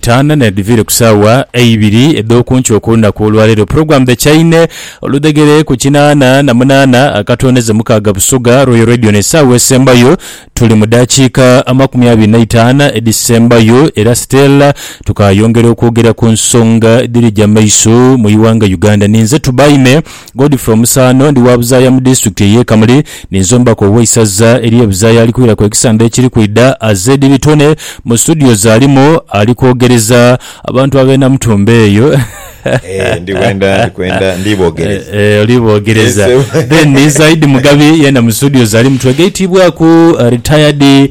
Taana n'edhivire ku saawa eibiri edh'okunkyo okw'olunaku olwaleero. Pulogulaamu dh'ekyaine oludhegere ku kinaana na munaana akatooneze mukaaga Busoga Royal Radio n'esaawa esembayo tuli mu daakiika amakumi abiri na itaanu edhisembayo era Stella tukaayongera okwogera ku nsonga edhiri gya maiso mu ighanga Uganda. Ninze Tubaime. Godfrey Omusaano, ndi wa Buzaaya mu Disitulikiti ey'e Kamuli. Ninze Omubaka ow'Eisaza ery'e Buzaaya ali kwiraku ekisande ekiri kwidha. Azedi Bitone mu situdiyo z'alimu ali kwogereza abantu ab'e Namutumba eyo. Eeh, ndi bwenda, ndi kwenda, ndi boogereza. Eeh, oli boogereza. Then ni Zaidi Mugabi, yeena mu situdiyo z'alimu twegaitiibwaku Retired.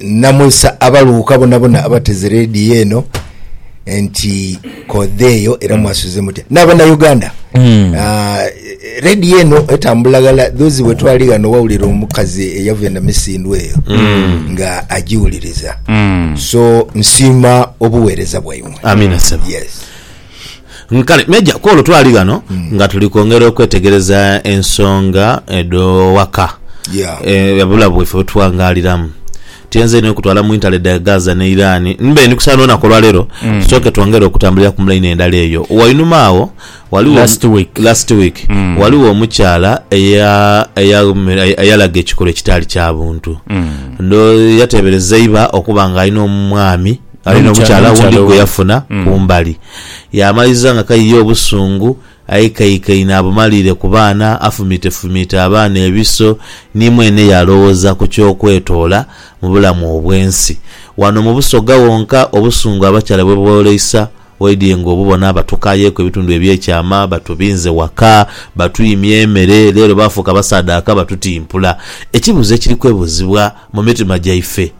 Namwisa abaluuka bonabona abateze leediyo eno nti kodheeyo era mwasuze mutya n'abanauganda hmm. ah, leediyo eno etambula ghala dhozi wetwali ghano wawulira omukazi eyava enamisindwa eyo hmm. nga agiwuliriza hmm. so nsiima obuweereza bwaimwe yes Kale Meeja, ku olwo twali ghano nga tuli kwongera okwetegereza ensonga edh'owaka, ababula bwaife bwe tughangaaliramu. Tuyenze inho okutwala mu intale dha Gaza ni Iraani. Mbe ndi kusaana olunaku olwa leero tusooke twongere okutambulira ku mulaini endala eyo. Wainuma agho ghaligho, last week, ghaligho omukyala eyalaga ekikolwa ekitaali kya buntu. Ndhowoza yateebereza iba okuba ng'alina omwami. Ali n'omukyala owundi gwe yafuna ku mbali. Yaamaliza nga kaiya obusungu, aikaikaine abumaliire ku baana, afumiitefumiite abaana ebiso, ni mwene yaalowooza ku ky'okwetoola mu bulamu obw'ensi. Wano mu Busoga wonka obusungu abakyala bwe booleisa waidhie ng'obubona. Batukaayeku ebitundu eby'ekyama, batubinze waka, batwimya emere, leero baafuuka basaadhaaka batutimpula. Ekibuuzo ekiri kwebuuzibwa mu mitima gyaife.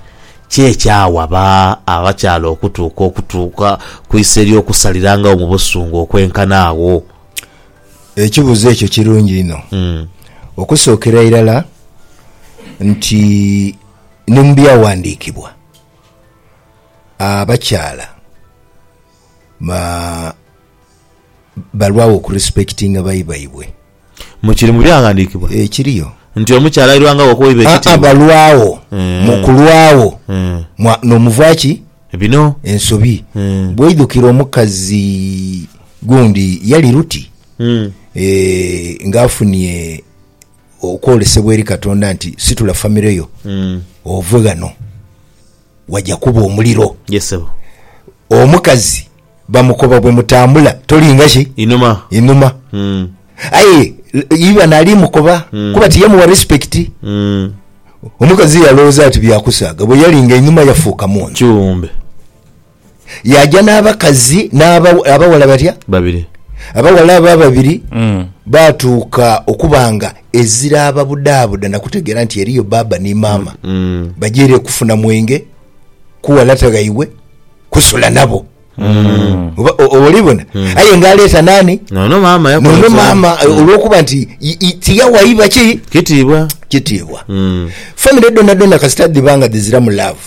Ki ekyawa ba abakyala okutuuka okutuuka ku iso ery'okusalirangawo mu busungu okwenkana agho? Ekibuzo ekyo kirungi inho. Okusookera irala nti ni mu Byawandikibwa abakyala balwagho okurespekitinga bai baibwe. Mu kiri mu Byaghandiikibwa. Ekiriyo. Nti omukyala airwangagho okuwaibwa ekitiibwa. Aa, balwagho. Mu kulwagho mwa, n'omuva ki? Bino. Ensobi. Bw'oidhukira omukazi gundi, yali Ruti, eeh, nga afunie okwolesebwa eri Katonda nti, Situla famire yo, ove ghano. waja kuba omuliro. Yes ssebo. Omukazi bamukoba bwe mutambula tolinga ki? Inuma. Inuma. Mm. Aye iba nali mukoba mm. kuba tiyamuwa respect. Mm. Omukazi yalowoza ati byakusaaga bwe yalinga inuma yafuuka muntu. Kiwumbe. Yaaja n'abakazi n'abaghala batya? Babiri. Abaghala abo ababiri mm. baatuuka okuba nga eziraababudaabuda na kutegeera nti eriyo baaba ni maama mm. mm. bajeere kufuna mwenge kuwalata ghaibwe kusula nabo mm. olibona mm. aye nga aleeta nani nono maama nono maama mm. olwokuba nti tiyawaiba ki kitiibwa kitiibwa mm. famire dona dona kasita dhiba nga dhiziramu laavu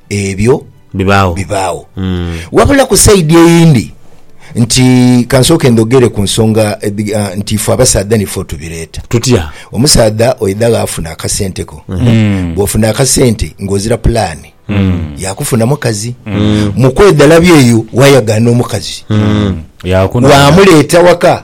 ebyo bibaagho bibaagho. Wabula ku sayidi eyindi nti kansooke ndhogere ku nsonga nti ife abasaadha nife otubireeta. Tutya? Omusaadha oidha ghaafuna akasente ko, bwofuna akasente ng'ozira pulaani ya kufuna mukazi. Mu kwedhalabya eyo wayagaana omukazi, waamuleeta waka.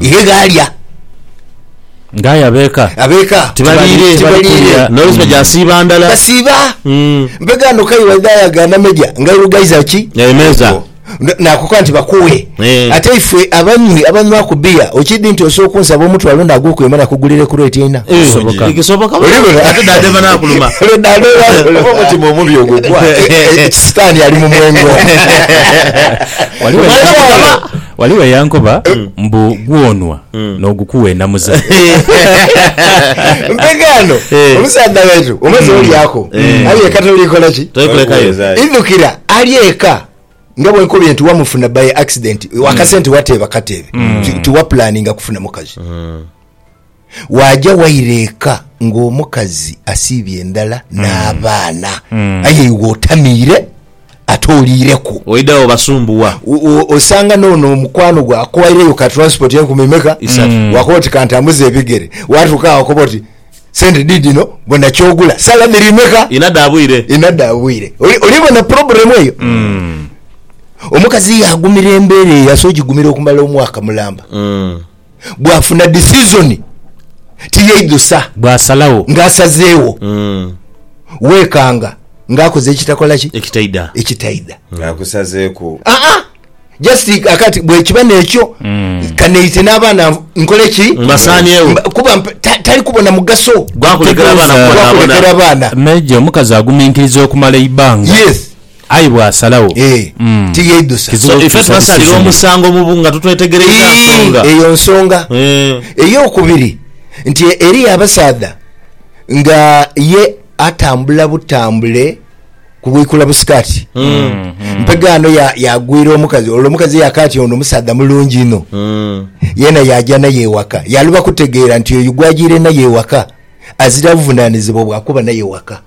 Ye ghaalya. Nga aye abeeka. Abeeka. Tibaliire. Tibaliire. Noise nga gyasiiba ndala. Basiiba. Mbe ghano kale waidha yaga nameja nga airugaiza ki? Emeeza. Naakukoba nti bakuwe. Ate ife abanywi abanywaku bbiya okidhi nti osobola okunsaba omutwalo ndha gwokwema nakugulire ku reeti eina? Kisoboka. Kisoboka bulungi. Ate dada eva naakuluma. Dada eva naakuluma. Omutima omubi ogwo gwa. Sitaani ali mu mwengo. Waliwo. Ghaligho eyankoba mbu gwonwa n'ogukugha enamuza. Mpe kano Eh. omusaadha waitu omaze olyaku ali eka toliikola ki Toli kulekayo. idhukira ali eka nga bwenkobye nti wamufuna by accident akasente wateeba kateebe Ti- tiwapulaninga kufuna mukazi Waaja waira eka ng'omukazi asiibye ndala n'abaana, aye iwe otamiire ate oliireku. Oidha obasumbuwa. Osanga n'ono omukwano gwe akuwaireyo ka transport enkumi meka, waakoba oti kantambuze ebigere, waatuuka agho wakoba oti sente diidino bona ky'ogula, salami ri meka? Inha dha bwire. Inha dha bwire. Olibona problem eyo? Omukazi yaagumira embeera eyo, asobola ogigumira okumala omwaka mulamba. bwafuna disizoni tiyeidhusa. Bwasalagho. Nga asazeegho. Weekanga nga akoze ekitakola ki? Ekitaidha. Ekitaidha. Nga akusazeeku. Aa, just akati bwekiba nekyo kaneite n'abaana nkole ki? Mbasaanyewo. Mba- Kuba mp- ta- tali kubona mugaso. Gwakulekera abaana Gwakulekera kubonaabona. abaana. Major, omukazi aguminkiriza okumala eibanga. Yes. Aye bw'asalagho, Ee, mm, tiyeidhusa. kizibu So ife okukyusa tubasalira decision ye. omusango mu bu nga totwetegereiza nsonga. Ii, eyo nsonga. Ee. Ey'okubiri, nti e, eriyo abasaadha nga ye atambula butambule ku bwikula busikaati. Mpega ano ya- yagwira omukazi, olwo omukazi yaka ati ono omusaadha mulungi inho. Mm. Yeena yaaja naye ewaka. Yaluba kutegeera nti oyo gw'agiire naye ewaka azira buvunanizibwa bwa kuba naye ewaka.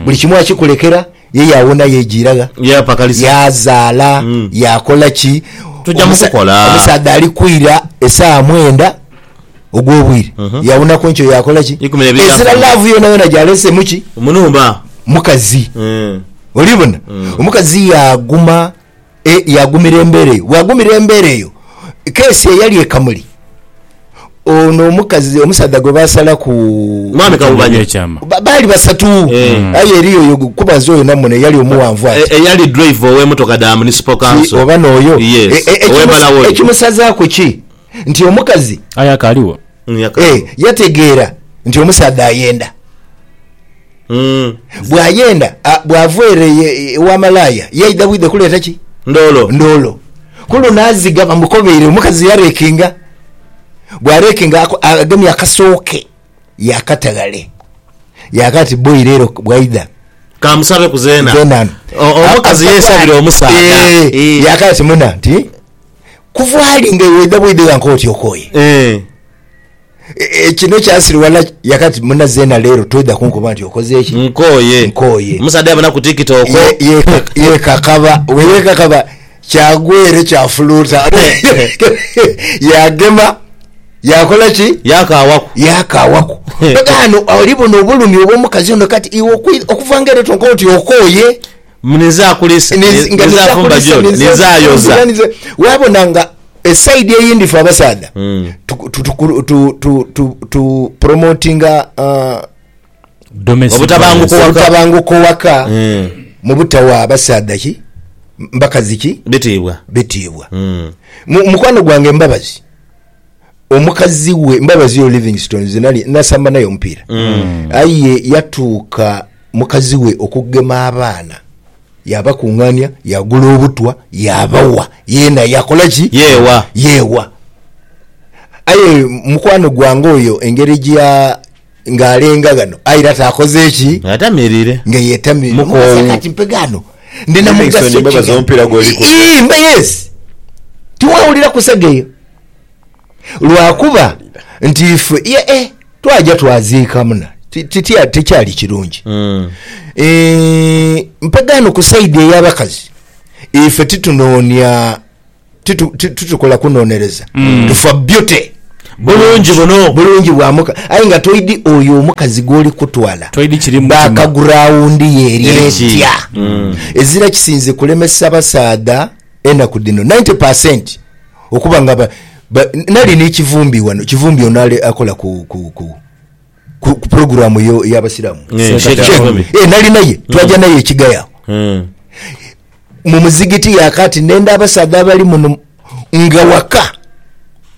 Buli kimu akikulekera Ye yaawona yeejiira gha? Yeepakalisa. Yaazaala? Yaakola ki? Tuja mu kukola. Omusaadha ali kwira esaaha mwenda ogw'obwire, yaawonaku enkyo yaakola ki? Ikumi n'ebiri Ezira yaafuna. laavu yonayona gy'aleese mu ki? Mu nhumba. Mukazi. Oli bona? Omukazi yaaguma E, yaagumira embeera eyo. Bw'agumira embeera eyo, keesi eyali e Kamuli, ono omukazi, omusaadha gwe baasalaku Mwami Kawuba ekyama. Nyekyama. Ba- baali basatu. Eh. Aye eriyo oyo kubaza oyo namuno eyali omuwanvu ati. E- eyali driver ow'emotoka dha municipal Ti council. oba n'oyo. E- Yes, e- ekimusa- ow'embalawo oyo. Ekimusazaaku ki? Nti omukazi Aye akaaliwo. Mm, yaka- e, yategeera nti omusaadha ayenda. Mm. Bwayenda a- bwava ere ye- ewa malaaya yaidha bwidha kuleeta ki? Ndoolo. Ndoolo. Ku luno aziga bamukobeire, omukazi yareekinga. Bwareekinga ako- agemye akasoo ke yaakata ghale. Yaagha ati, Boi leero bwaidha Kamusabe ku zeena. zeena ano. O- Omukazi A- yesabira a- omusaadha. Eh, Eh. Yaagha ati, Muna nti kuva ali nga iwe oidha bwidha ghanka oti okooye. Eh. E, kino kyasiriwala yakati muna zena lero toidha kunkoba nti okoze ki nkoye nkoye omusaadha yabona ku tiktok yekakaba weyekakaba kyagwa ere kyafuluta yagema yakola ki yakawaku yakawaku ano oli buno obulumi obwomukazi ono kati iwe okuvanga ere tonkoba nti okoye Ninza kulisa, ninza fumba gyoli, ninza yoza. Wabona nga esaidi eyindi fe abasaadha hmm. tupromotinga uh, obutabanguko waka hmm. mu butawa abasaadha ki mbakazi ki bitiibwa bitiibwa hmm. mukwano gwange mbabazi omukazi we mbabazi yo livingstone zenali nasamba naye omupiira mm. aye yatuuka mukazi we okugema abaana yabakungania yagula obutwa yabawa yena yakola ki yewa yewa aye mukwano gwange oyo engeri gya Ng'alenga ghano, aye era taakoze ki? Ng'atamiirire. Nga yeetamiirire. Mukoowu. Mugasa kati mpe ghano. Ndi na mugaso ki ghano? N'enaiso n'embabazi ghano? Omupiira gw'oli ku dha. Ii, mba yes. Tiweewulira kusaga eyo? Lwakuba nti ife, ye e, twaja twaziika muna. Ti, ti, ti, tikyali kirungi. Ii, mpe ghano ku sayidi ey'abakazi. Ife titunoonia. titukola kunonereza mm. tufa beauty bulungi buno bulungi bwamuka aye nga toidi oyo omukazi gwoli kutwala bakagrawundi yeri etya mm. ezira kisinze kulemesa basaadha enaku dhino 90 percent okuba nga nali nekivumbi wano kivumbi ono akola ku ku, ku pulogulaamu eyo ey'Abasiraamu Eh, Sheikh Sheikh Sheikh, Akomi. eh, nali naye twaja naye ekigaya awo Mm. mu muzigiti yakati nenda abasaadha abali muno nga waka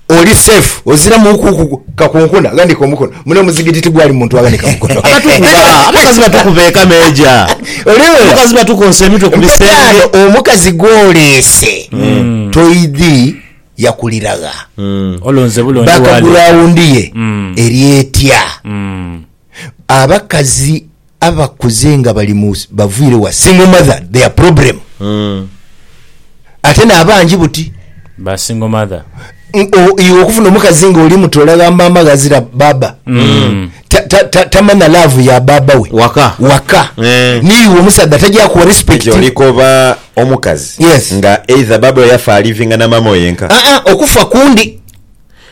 oli safe oziramu kuku kakunkuna ghanika omukono muno omuzigiti tigwali muntu aghanika mukono Abatukuba, abakazi batukuba ekameeja Olewera? abakazi batukonsa emitwe ku bisenge Mpetaano omukazi gwoleese toidhi yakulira gha? Bakaguraawundi ye eri etya? Abakazi abakuze nga bali mu baviire wa single mother their problem ate n'abangi buti ba single mother iwe okufuna omukazi nga oli muto olagha maama ghazira baaba tamanha love ya baaba we waka n'iwe omusaadha tajakuwa respect. omukazi Yes. nga either baba we yafa alivinga na maama we yenka. Aa okufa kundi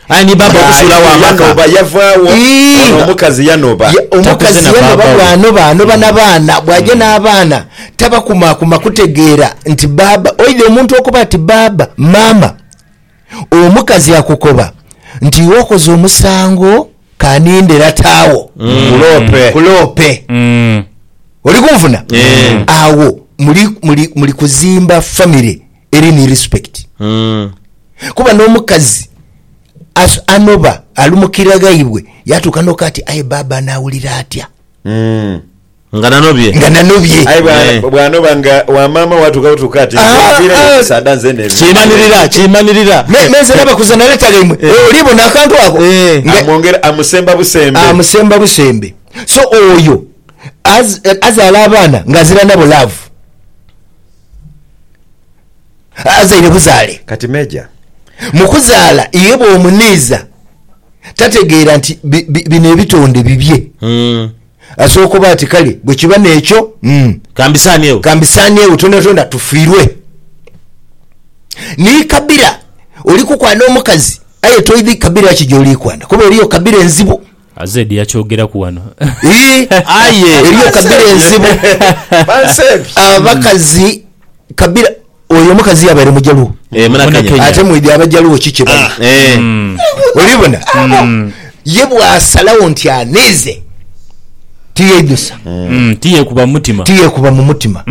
aye ni baba okusulawo Nga amaka yanoba yavaawo Ii, ono nga- omukazi yanoba. Ye- Takuze omukazi na yanoba baaba we. bwanoba anoba na baana bwaja n'abaana tabakumaakuma kutegeera nti baaba oidha omuntu okuba ati baaba maama omukazi akukoba nti iwe okoze omusango kaninde lata awo Nkulope. nkulope Mm. oli kunfuna Eh. awo muli, muli, muli kuzimba family eri ni respect Mm. kuba n'omukazi as- anoba alumukira ghaibwe yatuuka noka ati aye baaba anaawulira atya Mm. Nga nanobye. Nga nanobye. Aye bwa, Eeh. bw'anoba nga wa maama we atuuka butuuka ati, Nze Aa, nviireyo aa. omusaadha nzena ebintu. Kimanirira, kimanirira. Me, me nze nabakuza naleetaga imwe. Eeh. Oli bona akantu ako? Eeh. Nga. Amwongera, amusemba busembe. Amusemba busembe. So oyo az, azaala abaana ng'azira nabo laavu. A, azaire buzaale. Kati Meeja. Mu kuzaala, ye bw'omuniiza tategeera nti bi, bi, bino ebitonde bibye. Mm. Asooka oba ati, Kale, bwe kiba n'ekyo, ka mbisaaniegho. Ka mbisaaniegho twonatonda tufiirwe. Ni kabira oli kukwana omukazi, aye toidhi kabira ki gy'oli kwana, kuba eriyo kabira enzibu. Azed yakyogeraku ghano. Ii, aye eriyo kabira enzibu. Abakazi kabira. Oyo omukazi yabaire mujaluwo ate mwidhi abajaluwo ki kyebali olibona ye bwasalagho nti aniize tiyeidusa tiyekuba mumutima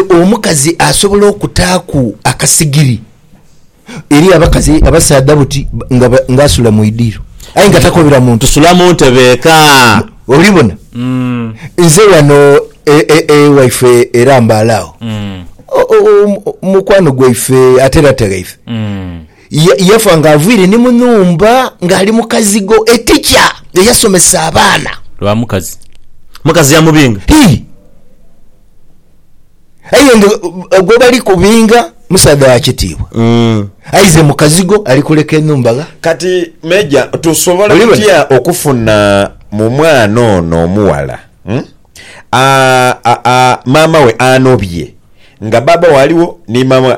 omukazi asobola okutaaku akasigiri. Eriyo abakazi abasaadha buti nga nga asula mu idiiro aye nga takobera muntu. Sula mu ntebe eka. Oli bona? Nze wano e, e, e, waife era mbaale agho. O, o, o, mukwano gwaife ate era tegheife. Ya, yafa nga avwire ni mu nhumba ng'ali mu kazigo. Etica eyasomesa abaana. Lwa mukazi. Mukazi yamubinga. Hii. Aye nga gwe bali kubinga musaadha wa kitiibwa, aye ize mukazigo ali kuleka enhumba gha. Kati Major tusobola tutya okufuna mu mwana ono omughala maama we anobye nga baaba we aligho ni maama we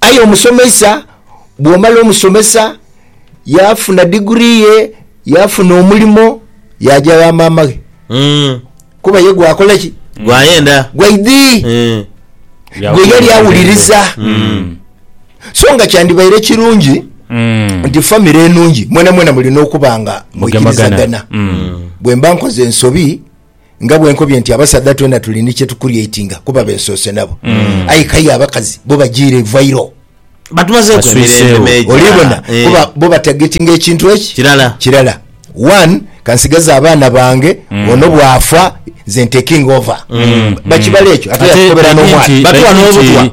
Aye omusomesa bwomala omusomesa yafuna diguri ye yafuna omulimo yaja gha maama ghe Mm. kuba ye gwakola ki Gwayenda. gwaidhi Eh. gwe yali awuliriza Mm. so nga kyandibaire kirungi Mm. nti famire enungi mwenamwena mulina okuba nga Mugemagana. mwikirizagana Mm. bwemba nkoze ensobi Nga bwe nkobye nti abasaadha twena tuli ni kye tukurietinga kuba be nsoose nabo. Mm. Aye k'aye abakazi bo bajiire ivairo. Batumazeeku emirembe meja. Olibona, eh. kuba bo batagetinga ekintu eki. Kirala. Kirala. One, kansigaze abaana bange, mm. ono bw'afa, nze ntekinga ova. Mm. Bakibala ekyo, ate yakukobera n'omwana. Batuwa n'obutwa.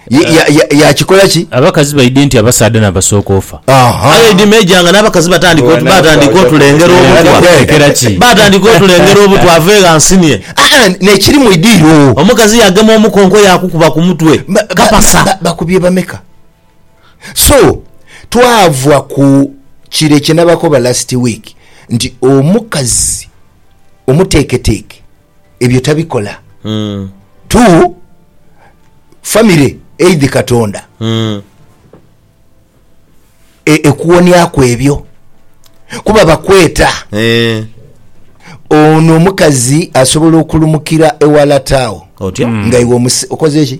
Ya- ya- ya- yakikola ki Abakazi baidhi nti abasaadha n'abasooka ofa. Aha. Aye idi Major nga n'abakazi batandika otu- batandika otulengera obutwa. Batekera ki? Batandika otulengera obutwa ave gha nsinie. Ah, ah, nekiri mu idiiro Omukazi yagema omukonko yakukuba ku mutwe. Ba- ba- Kapasa. ba- bakubye bameka so twava ku kire kyenabakoba last week nti omukazi omuteeketeeke ebyo tabikola mm. tu famire eidhi katonda mm. e, ekuwoniaku ebyo kuba bakweta eh. ono omukazi asobola okulumukira ewalata awo otya mm. nga iwe okoze ki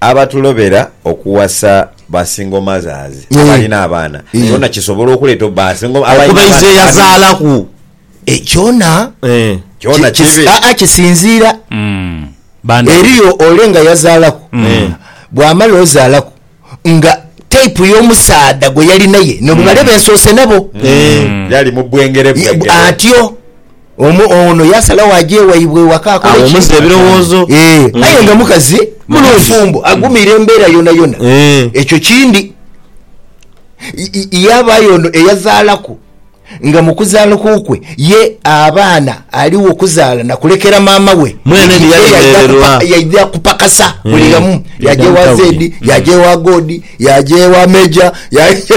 Abatulobera okuwasa ba single mothers abalina abaana kyona kisobola okuleeta okuba okuba eiza eyazaalaku kyona kyona kibi aa kisinziira eriyo ole nga yazaalaku bwamala ozaalaku nga type yomusaadha gweyali naye nobubale bensoose nabo yali mubwengere bwengere atyo. Omu, ono yaasalagho aje waibwe ewaka akole ki? Agho omuze ebirowoozo. Ee, aye nga mukazi mufumbo, agumiire embeera yonayona. Ekyo kindi. Y, yaabaayo ono eyazaalaku, nga mu kuzaalku kwe ye abaana aligho okuzaala na kulekera maama we, Mwene ni yalemererwa. Yaidha kupakasa buli ghamu, yaaja ewa Zedi, yaaja ewa Godi, yaaja ewa Meja, yaaja,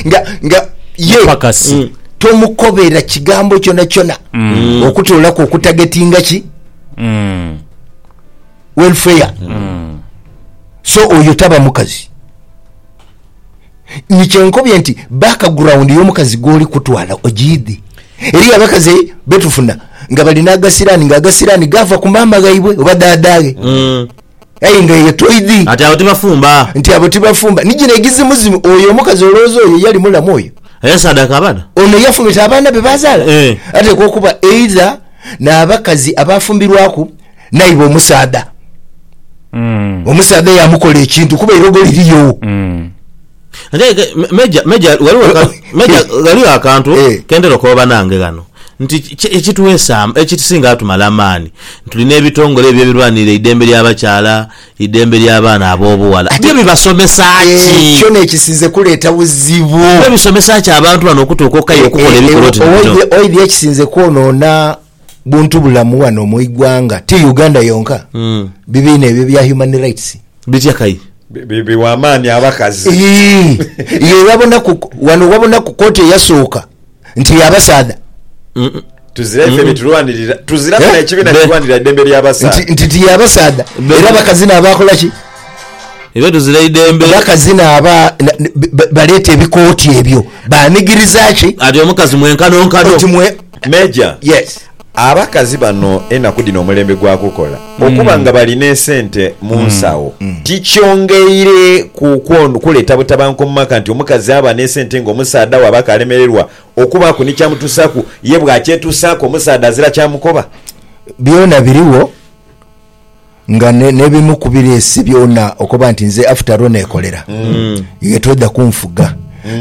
nga, nga, ye. Mupakasi. tomukobera kigambo kyona kyona mm. okutolaku okutagetinga ki mm. welfare mm. so oyo taba mukazi nikyenkobye nti background yomukazi gwoli kutwala ogiidhi eriyo abakazi betufuna nga balina agasirani nga agasirani gava ku maama ghaibwe oba daadaghe mm. Aye nga eyo toidhi. Ati abo tibafumba. Nti abo tibafumba. Ni gino egizimuzimu. Oyo omukazi olowooza oyo yali mulamu oyo? Eyasaadaaka abaana? Ono yafumita abaana be baazaala? Eeh. Ateekwa okuba eidha n'abakazi abaafumbirwaku naiba omusaadha. Omusaadha yaamukola ekintu kuba eirogo lirigho. ghaligho akantu eh. kentera okooba nange ghano nti ekitwesa ekisinga atumala amaani tulina ebitongole ebyo ebirwanirira eidembe lya bakyala, eidembe lya baana abobughala byo bibasomesa ki? Ekyo nekisinze kuleeta buzibu. Byo bisomesa ki abantu bano okutuuka okukaya okukola ebikolwa oti bino? Oidhi ekisinze kwonoona buntu bulamu wano mu igwanga ti Uganda yonka mm. bibiina ebyo bya human rights bitya kai biwa amaani abakazi ye wabonaku wano wabonaku koti eyasooka nti yabasaadha mm -mm. tuzira ife byetulwanirira tuzira eh? ekibiina kirwanirira eddembe lyabasaadha nti ti yabasaadha era abakazi naabakola ki era tuzira idembe bakazi naaba baleeta ebikooti ebyo banigiriza ki ati omukazi mwenkanonkano Major, Yes. abakazi bano enaku dhino omulembe gwa kukola okuba nga balina esente munsawo tikyongeire ku kwon kuleta butabanguko mumaka nti omukazi aba nesente nga omusaadha we aba kalemererwa okubaku ni kyamutusaku ye bwakyetusaku omusaadha azira kyamukoba? Byona biriwo. nga ne- nebimu kubireese byona okoba nti nze after all nekolera iwe toidha kunfuga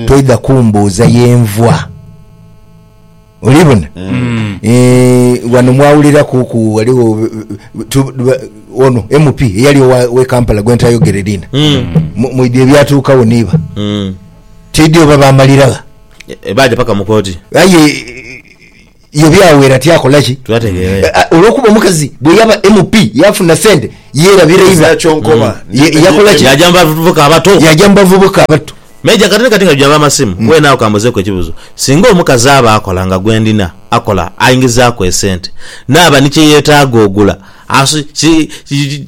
toidha kumbuuza yenvwa olibona Eh, wano mwawuliraku ku waliwo tu- ba- ono mp eyali owa- wekampala gwentayogere liina Mu- mwidhi ebyatuukawo niiba tidhi oba bamaliragha baja paka mukoti aye Ye byawera ti akola ki? Tulategeera eyo. Eh, Olw'okuba omukazi bwe yaba MP yaafuna sente yeerabira iba. Ezira kyonkoba. Ye- yakola ki? Yaja mu bavubuka abato. Yaja mu bavubuka abato. Meja, kati ni kati nga tujaba amasimu, weena agho kambuzeeku ekibuzo. Singa omukazi aba akola nga gwe ndina, akola, aingizaaku esente, naaba ni kye yeetaaga ogula, asu, ki, ki, ki,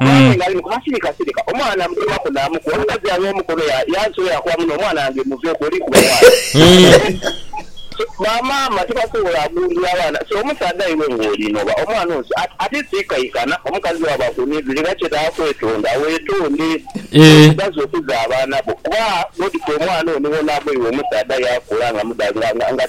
Mwathe ng'ali mu kubasirika sirika, omwana namukomaku naamukuba. Omukazi yagha omukono yansula yaakoba muno, Omwana wange muveeku, oli kuba mwana. So, bamaama tibasobola gundula abaana. So, omusaadha iwe ng'oli noba omwana onsi ati, ate siikaikana omukazi bwaba akunidhire era kyetaaga kwetonda. Weetonde omukazi okuza abaana bo kuba God kwe mwana ono wona agho iwe omusaadha yaakula nga, nga, nga, nga,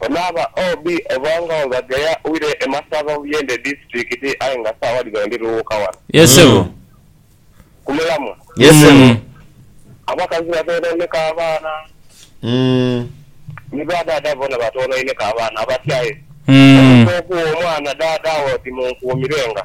Ono aba OB oba nga webagheya wire e Masaba mu Buyende Disitulikiti aye nga sawa dhino ndi Luwuuka wano. Yes ssebo. Ku mulamwa. Yes ssebo. Abakazi batwonaineku abaana ni ba daada boona batwonaineku abaana abatyaye. Omuntu okugha omwana daada we oti munkuumirenga.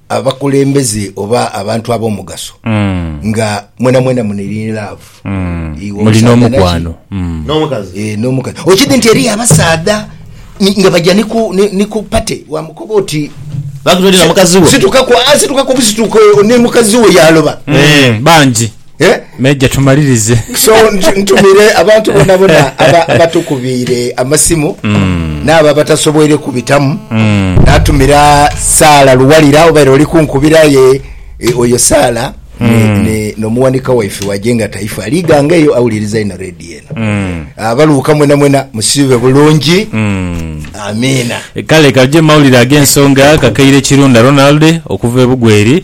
abakulembeze oba abantu ab'omugaso nga mwenamwena muniri ni laavu. Iwe Muli omusaadha naki? n'omukwano. Mm. N'omukazi. Eh, n'omukazi okidhi nti eriyo abasaadha ni- nga baja ni ku- ni ni ku pate wamukoba oti Bakutoolera mukazi wo. situkaku ah, situkaku busituuka oyo ni mukazi wo yaaloba. Mm, bangi. Eh? Meja tumalirize. So ntu- ntumire abantu bonabona aba- abatukubiire amasimu Mm. n'abo abatasoboire kubitamu Mm. natumira saala luwalira obaire oli kunkubira ye e, oyo saala Mm. ne- ne- n'omuwanika waife wajenga taifa aliganga eyo awuliriza ino redi eno Mm. abaluuka mwena mwena musiibe bulungi Mm. amiina kale kaje mawulire ag'ensonga kakaire kirunda ronald okuva ebugweri